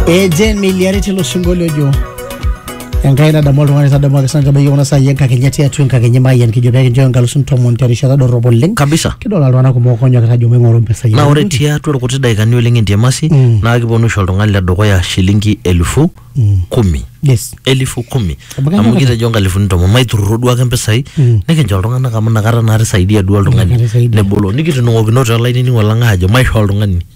ejen miliari tilo sinkolio ojo enkai nadamu oltung'ani tadamu ake sancho meyieu kuna saai enkakenya tiatua enkakenya mayian kijo pee kinchooyo inkalusin tomon terishata dorrop oleng kabisa kidol iltung'anak kumok onyokita ajo maing'oru impisai naa ore enkuti. tiatua irkuti daikani oleng entiamasi Mm. naa kiponu oshi oltung'ani le dukuya shilingi elfu Mm. kumi yes elfu kumi Amu kenya amu kata. kitejo nkalifuni tomon maiturruro duake mpisai Mm. nikincho iltung'anak amu nakata naa tisaidia duo oltung'ani Nakata isaidia. nebolo nikitunung'okinote olainining'o lang aajo maishoo oltung'ani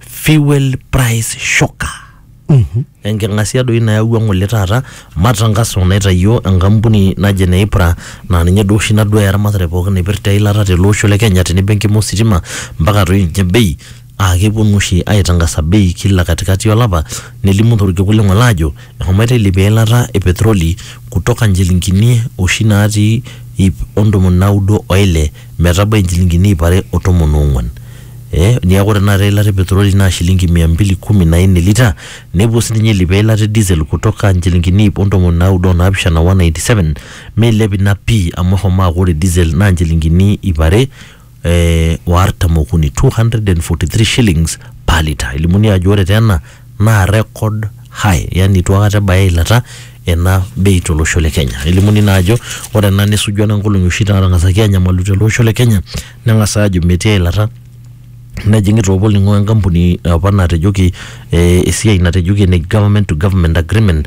fuel price shocker enking'asia doi nayawua ng'ole taata matangaso naitayio enkampuni naje neipra naa ninye duo oshi naduaya eramatare pookin naipirta eilata tele osho le kenya tenebo enkima ositima mpaka toi ninye bei aa keponu oshi aitangasa bei kila katikati olapa nelimu torkekun le ng'ole aajo ehomoito ailepie eilata e petroli kutoka nchilingini oshi natii iip ontomoni naudo oile metabai inchilingini iip are o tomon oong'uan eh, niaku ore tenakata eilata e petroli naa shilingi mia mbili kumi na nne lita nepuo sininye eilip eilata e diesel kutoka inchilingini iip ontomoni naudo onaapishana 197 meilep ina pii amu eshomo aaku ore diesel naa inchilingini iip are eh, o artam okuni 243 shillings per litre elimuni ajo ore taa ena naa record high yani itu akata ebaya eilata ena bei tolosho le Kenya. Elimuni naa ajo ore ena nesuju ena nkolong'i oshi naatang'asaki aanyamalu tele osho le Kenya neng'as aajo metii eilata nejing'i taa opa olning'o enkampuni opa natejoki eh esiai natejoki ene government to government agreement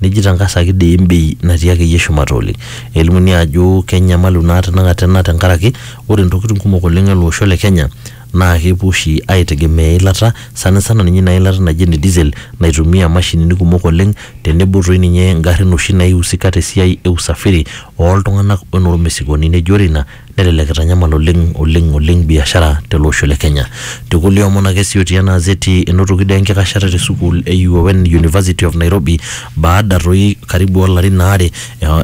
neji tangasaki dei embei natii akeyie shumata oleng. Elimuni ajo kenyamalu naa tenakata ena tenkaraki ore ntokitin kumok oleng ele osho le Kenya naa kepuo oshi aitegemea eilata sanisana ninye ina ilata naji ene diesel naitumia imashinini kumok oleng tenebo toi ninye ingarrin oshi naiusika tesiai e usafiri oltung'anak onormesigoni neji ore ina Nelelek eitanyamal oleng oleng oleng biashara tele osho le Kenya. Te kulie omon ake sii otii ena azeti enotoki doi enkikashata te sukuul e UON University of Nairobi baada toi karibu olarin aare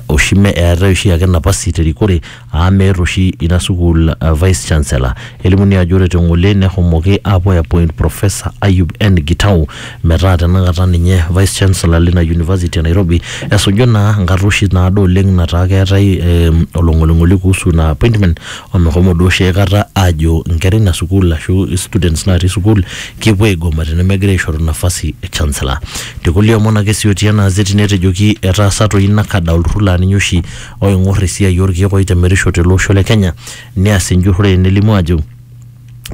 oshi mme eetae oshi ake napasi te rikore aa meeta oshi ina sukuul vice chancellor. Elimuni ajo ore te ng'ole nehomoki aapuo ai appoint Professor Ayub N Gitau Metaa tenakata ninye Vice Chancellor lina University e Nairobi esuju naa nkarruoshi naado oleng nataa keetae eh, olong'oling'oli kuhusu ina appointment omeshomo duo oshi aikata aajo inkera ina sukuul ashu students natii sukuul kepuo aigoma tenemegira aishoru nafasi e Chancellor. Te kulie omon ake sii otii ena azeti netejoki etaasa toi NACADA olturrur laa ninye oshi oing'orr esiai orkeek oitemerisho tele osho le Kenya neas enjurrore nelimu aajo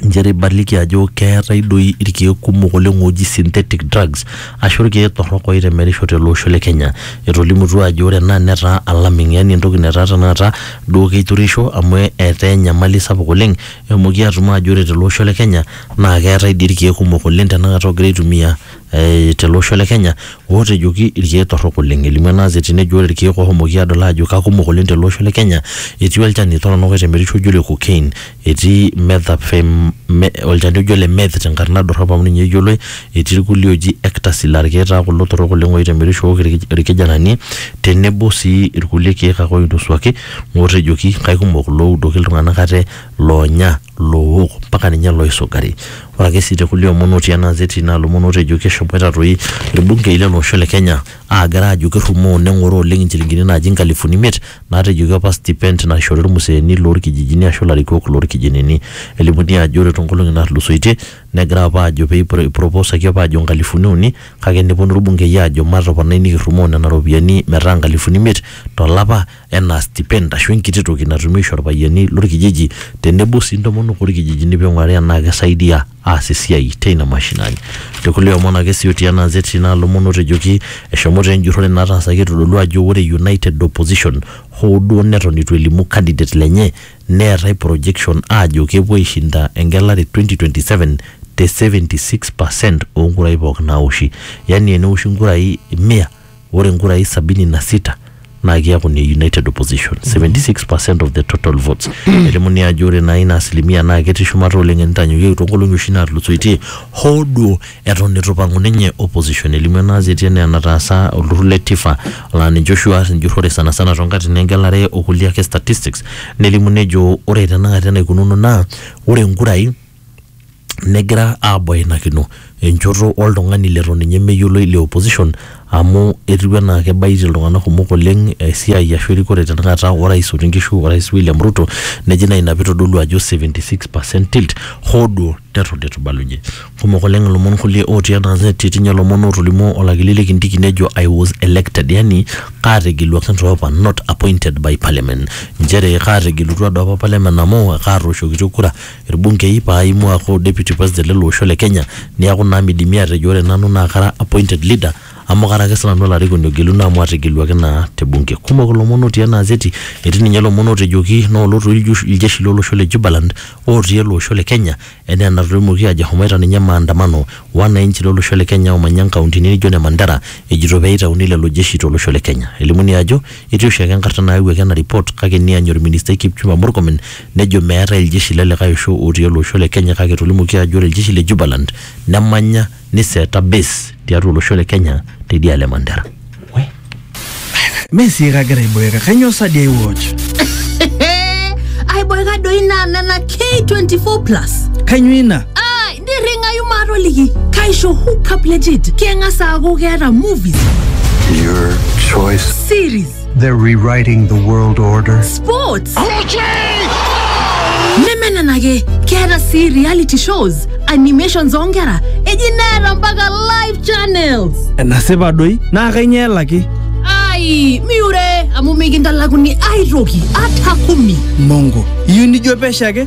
inchere ibaliki ajo keetae doi irkeek kumok oleng ooji synthetic drugs ashu irkeek torrok oitemerisho tele osho le Kenya. Etolimutua ajo ore ena netaa alarming yani entoki netaa tenakata duo keitureisho amu etaa enyamali sapuk oleng eshomoki atum aajo ore tele osho le Kenya naa keetae dii irkeek kumok oleng tenakata oogira aitumia eh tele osho le Kenya ootejoki irkeek torrok oleng. Elimu ena gazeti nejo ore irkeek oshomoki aadol aajo kakumok oleng tele osho le Kenya etii olchani torrono oitemerisho oji ole cocaine Etii methamphetamine, me, olchani oji ole meth tenkarna dorrop amu ninye eyioloi. Etii irkulie ooji ecstasy laa irkeek taa kulo torrok oleng oitemerisho ook irkijanani tenebo sii irkulie keek ake oinosuaki ootejoki kaikumok iloudoki iltung'anak ate, loonya, loowok mpaka ninye ilooisugari. Ore ake sii te kulie omon otii ena azeti naa ilomon ootejoki eshomoita toi irbungei lele osho le Kenya aagira aajo kerrumoo neng'oroo oleng inchilingini naaji inkalifuni imiet Naatejoki apa stipend naishori ilmuseeni loo lkijijini aashu ilarikok loo lkijinini. Elimuni aajo ore too nkolong'i naatulusoitie negira apa aajo pee eiproposaki apa aajo nkalifuni uni kake neponu ilbungei aajo matoponai nikirrumoo nena ropiyiani metaa nkalifuni imiet to lapa enaa stipend aashu enkiti toki natumi aisho ilpayiani lo lkijiji tenebo sii ntomonok oo lkijijini pee eing'urari enaa keisaidia aas esiai teina mashinani. Te kulie omon ake sii otii ena azeti naa lomon otejoki eshomo taa enjurore nataasaki eitodolu ajo ore United Opposition hoo duo neton eitu elimu candidate lenye neetae projection aajo kepuo aishinda engelare e 2027 te 76 per cent oo nkurai pooki naawoshi. Yani tenewoshi nkurai mia ore nkurai sabini na sita naa kiaku ne United Opposition 76% of the total votes. Elimuni ajo ore naa ina asilimia naa ketii shumata oleng enitanyanyukieki toonkolong'i oshi naatulusoitie hoo duo eton eitu ipang'u ninye opposition. Elimu ena azeti enaa enataasa olturrur le TIFA laa ninche oshi oas enjurrore sanasana toonkatitin engelare okulie ake statistics nelimu nejo ore tenakata enaikununo naa ore nkurai negira aabainakino enchoto oltung'ani leton ninye meyioloi le opposition amu etiu enaa kebaitie iltung'anak kumok oleng esiai ashu erikore tenakata orais otii nkishu orais William Ruto neji naa ina pitodolu ajo 76% tilt hoo duo neton itu ibalunye kumok oleng ilomon kulie otii ena gazeti etii inye ilomon otolimuo olakili likintiki nejo I was elected yani kaategeluaki toopa not appointed by parliament inchere kaategelutua doopa parliament amu kaatooshokitia kura. ilbungei paa aimu aaku deputy president lele osho le Kenya niaku naa midimi aatejo ore nanu naa kara appointed leader amu kara ake sinanu olarikoni ogeluno amu ategeluaki naa te bunge. Kumok ilomon otii ena azeti, etii ninye ilomon ootejoki naa olotu iljeshi lo losho le Jubaland otii ele osho le Kenya enaa enatoimuoki aajo eshomoita ninye maandamano wananchi lo losho le Kenya oomanya inkauntini naijo ine Mandera ejito pee itauni lelo jeshi to losho le Kenya. Elimuni ajo etii oshiake enkarna naayawuaki ena report kake neany olministai Kipchumba Murkomen nejo meetae iljeshi le likae osho otii ele osho le Kenya kake etolimuoki ajo ore iljeshi le Jubaland nemanya niseeta base tiatua olosho le Kenya teidialo e Mandera. Mee sii kagira aiboeka, kainyoo sa dii aiwatch? aiboeka doi naa nena K24 plus Kainyoo ina? ai nirring'ayu maatoliki kaisho hookup legit keng'as aaku keeta movies Your choice. series They're rewriting the world order. Sports. nemenenake keeta sii reality shows animations oonkera eji neeta mpaka live channels enasipa doi naa kainyoo elaki ai miure amu mikintalakuni aitoki ata kumi mongo iyieu nijo pesho ake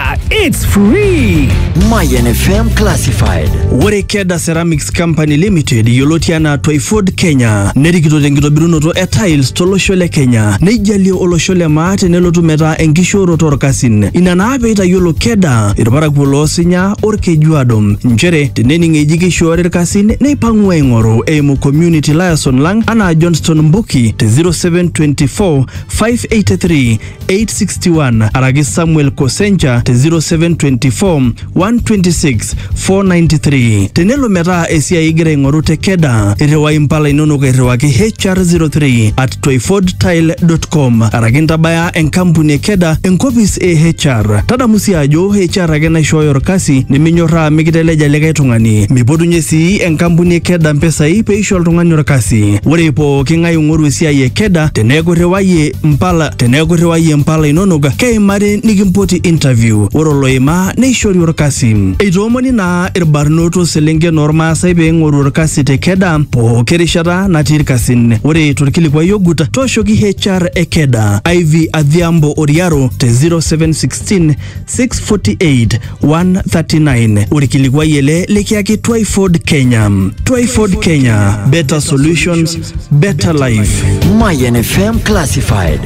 Ah, it's free! Mayan FM Classified. Ore Keda Ceramics Company Limited yioloti anaa Toyford Kenya nerikito tenkitobirunoto e tiles tolosho le Kenya neijalie olosho le maa tenelotu metaa enkishooroto orkasin. Ina naa peitayiolo Keda irparakuo loosinya orkejuado nchere tenening eji keishoori irkasin neipang'u aing'oru eimu community liaison lang anaa Johnston Mbuki te 0724 583 861 araki Samuel Kosencha te 0724 126 493. Tenelo metaa esiai igira aing'oru te Keda, irriwai impala inonok airriwaki HR03 at twyfordtile.com araki intabaya enkampuni e Keda enkopis e HR. Tadamu sii ajo HR ake naishooyo orkasi niminyorraa mikiteleja likae tung'ani. Mipotunye sii enkampuni e Keda mpisai peisho oltung'ani orkasi. Ore pooki ng'ae oing'oru esiai e Keda teneeku irriwayie mpala teneeku irriwayie mpala inonok keimari nikimpoti interview ore oloimaa neishori orkasi eitoomoni naa irbarnot oselenken ormaasai pee eing'oru orkasi te keda pooki rishata natii irkasin ore torkilikuai ogut tooshoki HR e keda Ivy Adhiambo Oriaro te 0716 648 139 orkilikuai ele likiaki Twyford Kenya. Twyford Kenya, better solutions, better life. Mayan FM Classified.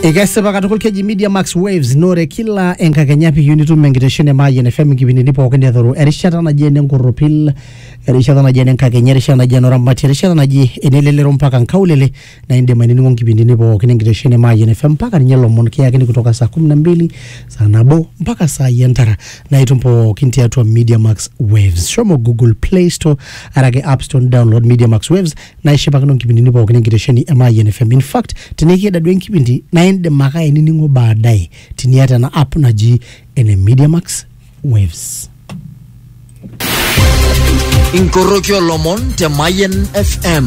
Ikesipa katukul keji Media Max Waves nore kila enkakenya piyieu nitum enkitesheni e Mayian FM nkipindini pookin edoru erishata naji ene nkorropil erishata naji ene nkakenya erishata naji ene oramati erishata naji ene lelero mpaka nkaulele na indim ainining'o nkipindini pookin enkitesheni e Mayian FM mpaka ninye lomon kiyakini kutoka saa kumi na mbili saa nabo mpaka saa yi entara na itum pookin tiatua Media Max Waves. Shomo Google Play Store arake App Store download Media Max Waves na ishipakino nkipindini pookin enkitesheni e Mayian FM. In fact, tenikieda duo enkipindi na indim ake ainining'o baadaye tiniata ena app naji ene Media Max Waves. inkoroki olomon te Mayen FM.